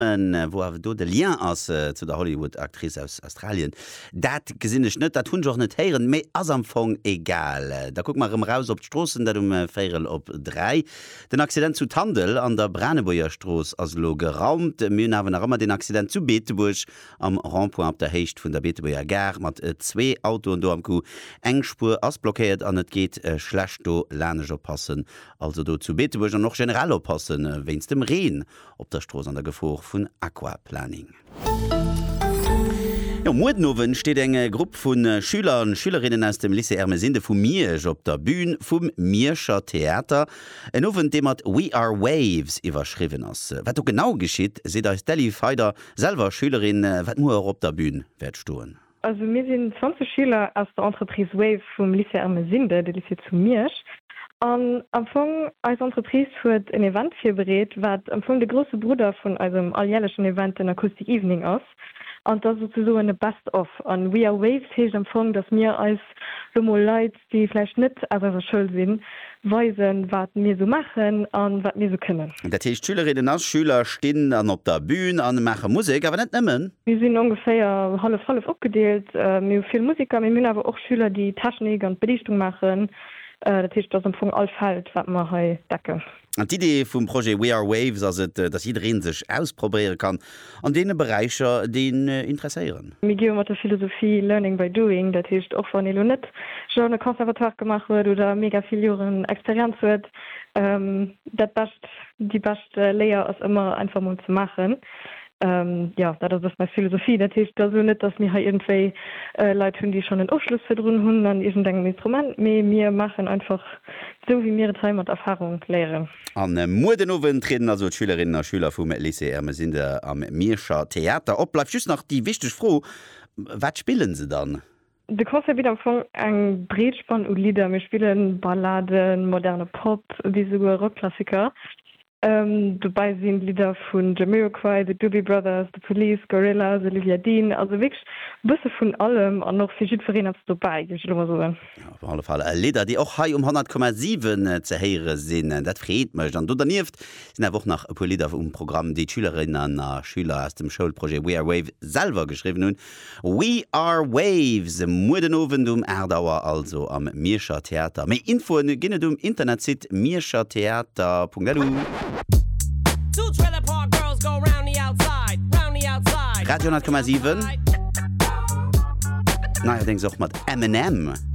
An wou awer do de Lien ass zu der Hollywood-Actrice aus Australien, dat gesinn ech net, dat hunn ech och net héieren, mee ass am Fong egal. Da kucke mer erëm eraus op d'Stroossen, dat um véirel op dräi. Den Accident zu Tandel an der Branebuergerstrooss ass elo geraumt. Mir hunn awer nach ëmmer den Accident zu Beetebuerg am Rond-point op der Héicht vun der Beetebuerger Gare mat zwee Autoen do am Coup. Eng Spuer ass blockéiert an et geet schlecht do, laanescht oppassen also do zu Beetebuerg an och generell oppasse wéinst dem Reen. op der Strooss an der Gefor vun Aquaplaning. Jo, muer den Owend steet eng Grupp vu Schüler an Schülerinnen aus dem Lycée Ermesinde vu Miersch op der Bühn vum Mierscher Theater. En Owend, dee mat We are Waves iwwerschriwwen ass. Wat do genau geschitt, seet eis d'Elly Feider, selwer Schülerin, wat muer och op der Bühn wäert stoen. Also mir sinn 20 Schüler aus der Entreprise Wave vum Lycée Ermesinde, de Lycée zu Miersch. An am Fong, eis Entreprise huet en Event virbereet, wat am Fong de grousse Brudder vun eisem alljärlechen Event, den Acoustic Evening ass. An 't ass souzesoen e Best of. An We Are Waves heescht am Fong, dass mir eis lo mol Leit déi vläicht net aus eiser Schoul sinn, weisen, wat mir esou maachen a wat mir esou kënnen. Dat heescht, Schülerinnen a Schüler stinn dann op der Bün a maache Musek, awer net nëmmen. Mir sinn ongeféier hallef-hallef opgedeelt, mir hu vill Musiker, mee mir hunn awer och Schüler, déi d'Technik an d'Beliichtung maachen. Dat heescht, et ass am Fong all Feld, wat mer hei decken. D'Idee vum Projet We Are Waves ass et, datt jiddereen sech ausprobéieren kann an deene Beräicher, déi een interesséieren. Mir gi jo mat der Philosophie Learning by doing, dat heescht, och wann ee lo net schon e Conservatoire gemaach huet oder mega vill Joren Experienz huet, dat bescht, déi bescht Léier ass ëmmer einfach mol ze maachen. Jo, dat ass och meng Philosophie. Dat heescht also net, dass mir hei iergendwéi Leit hunn, déi schonn en Ofschluss virdrun hunn an iergendengem Instrument, mee mir maachen einfach sou, wéi mir et hei mat Erfarung léieren. A muer den Owend trieden also d'Schülerinnen a Schüler vum Lycée Ermesinde am Mierscher Theater op. Bleift just nach déi wichteg Fro, Wat spillen se dann? De Concert bitt am Fong eng breet Spann u Lidder. Mir spille Balladen, moderne Pop bis esouguer Rockklassiker. Dobäi sinn Lidder vun Jamiroquai, The Doobie Brothers, The Police, Gorillaz, Olivia Dean, also wierklech e bësse vun allem an och fir jiddwereen eppes dobäi, géif ech elo mol soen. Op alle Fall Lidder, déi och hei um 100,7 ze héiere sinn, dat freet mech. An do dernieft sinn awer och nach e puer Lidder um Programm, déi d'Schülerinnen a Schüler aus dem Schoulprojet We Are Wave selwer geschriwwen hunn. We Are Waves, muer den Owend um 8 Auer also am Mierscher Theater. Méi Infoen ginn et um Internetsite mierschertheater.lu. Radio 10,7, neierdéngs och mat Eminem.